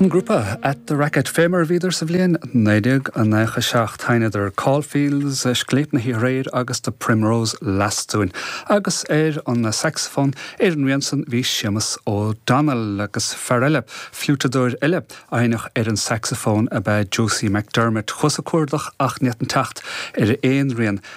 An grúpa At The Racket, fé mar a bhíodar sa bhliain 1997, sheinneadar Caulfields, Scléip na hOíche Aréir agus The Primrose Lass dúinn, agus ar an sacsafón, ar an rian san, bhí Séamus O'Donnell, agus fear eile, fliúiteadóir eile, a sheinneadh ar an sacsafón ab ea Josie McDermott, chuas ag cuardach ach ní fhéadfainn teacht ar aon rian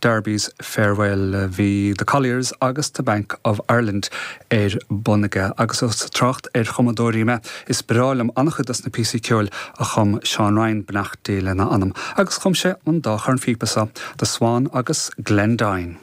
Darby's Farewell, bhí The Colliers agus The Bank of Ireland ar bun aige, agus ós ag trácht ar chumadóirí mé, is breá liom an-chuid dos na píosaí ceoil a chum Seán Ryan, beannacht Dé lena anam, agus chum sé an dá chornphíopa so, The Swan agus Glendine.